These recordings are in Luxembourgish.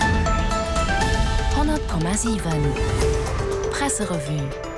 100,7 Presserevue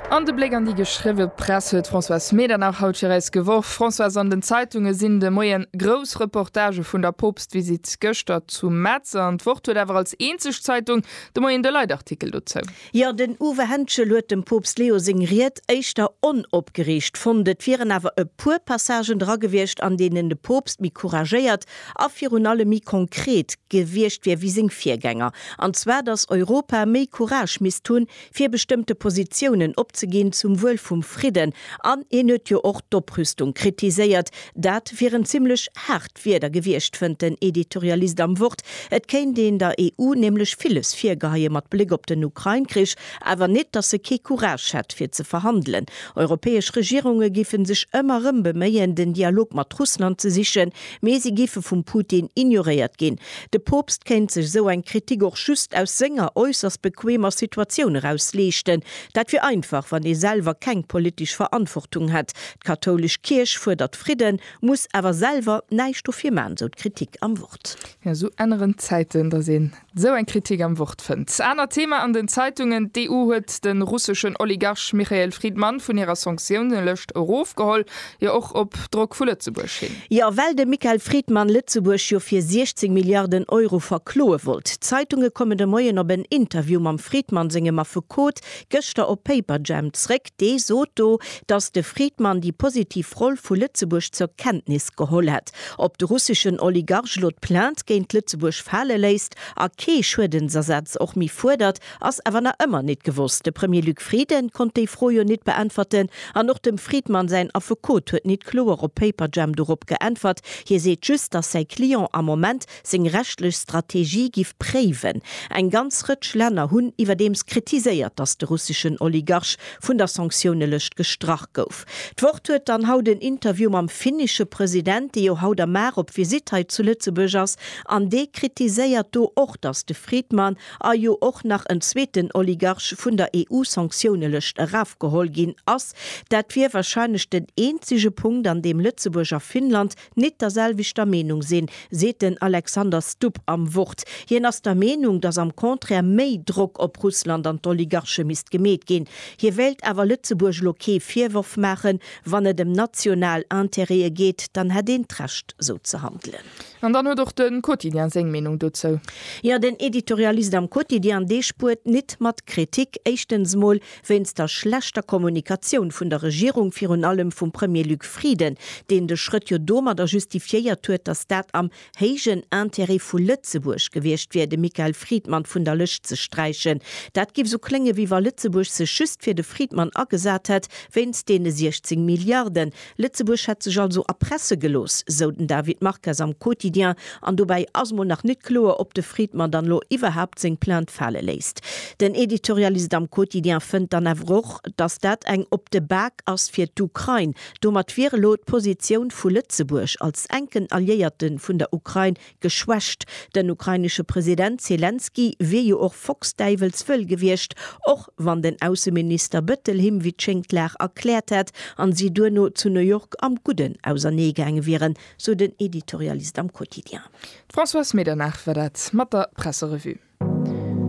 An de Bléck an déi geschriwwe Press huet d'Françoise Medernach haut fir eis geworf. Françoise, an den Zeitunge sinn de Moien grouss Reportagë vun der Poopstvisitt gëschter zu Metz an d'Wort huet awer als eenzeg Zeitung de Moien de Leitartikel dozou. Jo, den Uwe Henschel huet dem Poopst Leo seng Ried éischter onopgereegt fonnt. Et wieren awer e puer Passagen dra gewiescht, an deenen de Poopst méi couragéiert a virun allem méi konkret gewiescht wier wéi seng Virgänger. An zwar, datt Europa méi Courage misst hunn, fir bestëmmte Positiounen opzeginn zum Wuel vum Fridden. An hien huet jo och d'Oprüstung kritiséiert, Dat wieren zimmlech haart Wierder gewiescht, fënnt den Editorialist am Wort. Et kéint een der EU nämlech villes virgeheie mat Bléck op den Ukrain-Krich, awer net, datt se kee Courage hätt, fir ze verhandelen. Europäesch Regierunge géife sech ëmmer erëm beméien, den Dialog mat Russland ze sichen, mee si géife vum Putin ignoréiert ginn. De Poopst kéint sech esou eng Kritik och just aus senger äusserst bequemer Situatioun eraus leeschten. Dat wier einfach, wann ee selwer keng politesch Verantwortung hätt. D'kathoulesch Kierch fuerdert Fridden, muss awer selwer näischt dofir man, esou d'Kritik am Wort. Jo, esou änneren d'Zäiten, dass een esou eng Kritik am Wort fënnt. Anert Thema an den Zeitungen, D'EU huet de russeschen Oligarch Michael Fridman vun hirer Sanktiounelëscht erofgeholl, jo och op Drock vu Lëtzebuerg hin. Jo, well de Michael Fridman Lëtzebuerg jo fir 16 Milliarden Euro verkloe wollt. D'Zeitunge kommen de Moien op en Interview mam Fridman sengem Affekot gëschter op Paperjam zréck. Dee sot do, datt de Friedman déi positiv Roll vu Lëtzebuerg zur Kenntnis geholl hätt. Ob de russeschen Oligarch elo d'Plainte géint Lëtzebuerg fale léisst a kee Schuedensersatz och méi fuerdert, ass awer nach ëmmer nit gewosst. De Premier Luc Frieden konnt déi Fro jo nit beäntwerten an och dem Friedman säin Affekot huet nit kloer op Paperjam dorop geäntwert. Hie seet just, datt säi Client am Moment seng rechtlech Strategie giff préiwen. Eng ganz Rëtsch Länner hunn iwwerdeems kritiséiert, datt de russeschen Oligarch vun der Sanktiounelëscht gestrach gouf. D'Wort huet dann haut en Interview mam finnische President, dee jo haut a Mar op Visitt hei zu Lëtzebuerg ass, an dee kritiséiert do och, datt de Friedman a jo och nach en zweeten Oligarch vun der EU-Sanktiounelëscht erafgeholl ginn ass. Dat wier wahrscheinlech den eenzege Punkt, an deem Lëtzebuerg a Finnland net derselwechter Meenung sinn, seet den Alexander Stupp am Wort. Hien ass der Meenung, datt am Contraire méi Drock op Russland an d'Oligarche misst gemeet ginn. Hie wéilt awer Lëtzebuerg elo kee Virworf maachen. Wann et ëm national Interêtë geet, dann hätt een d'Recht sou ze handelen. An dann huet och de Quotidien seng Meenung dozou. Jo, den Editorialist am Quotidien, dee spuert nit mat Kritik. Éischtens mol, Wéinst der schlechter Kommunikatioun vun der Regierung, virun allem vum Premier Luc Frieden, deen de Schrëtt jo domadder justifiéiert huet, datt dat am héijen Intérêt vu Lëtzebuerg gewiescht wier, de Michael Friedman vun der Lëscht ze sträichen. Dat géif esou kléngen, wéi wa Lëtzebuerg sech just fir de Friedman agesat hätt, wéinst deene 16 Milliarden, Lëtzebuerg hätt sech also erpresse gelooss, sou den David Marques am Quotidien. An dobäi ass mol nach net kloer, ob de Friedman dann elo iwwerhaapt seng Plainte fale léisst. Den Editorialist am Quotidien fënnt dann awer och, datt dat eng op de Bak ass fir d'Ukrain. Domat wier elo d'Positioun vu Lëtzebuerg als enken Alliéierte vun der Ukrain geschwächt. Den ukrainesche President Selenskyj wier jo och focksdäiwelswëll gewiescht, och wann den Ausseminister Bëttel him wéi d'Schéngt d'Lag erkläert hätt an si duerno zu New York am Gudden ausernee gaange wieren, sou den Editorialist am Quotidien. D'Françoise Medernach war dat mat der Presserevue.